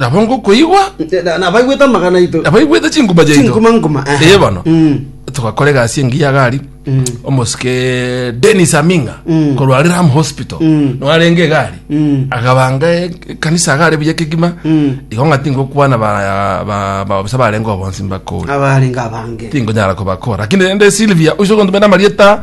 nabo ngokoigwa Nte- na- nabaigwete amagana aito abaigwete chinguma chiaito chinguma nguma aha. ee bono Mm. togakora egasi engiya gari Mm. omosike denis aminga Mm. korwa ram hospital Mm. noarenge egari Mm. agabanga e- ekanisa agare buya kegima Mm. igo ng'a tingokwana ba- ba- babisa barenge obonsi mbakore abarenga abange tingonyara kobakora lakini rende silvia usogontumena marieta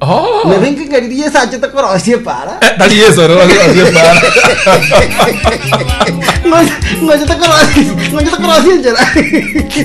Oh. Nebe inki ng'a riria Yesu achete korosia epara. Eh, Tari Yesu ore orosie epara. Ngochete korosia, ngochete korosia enchera.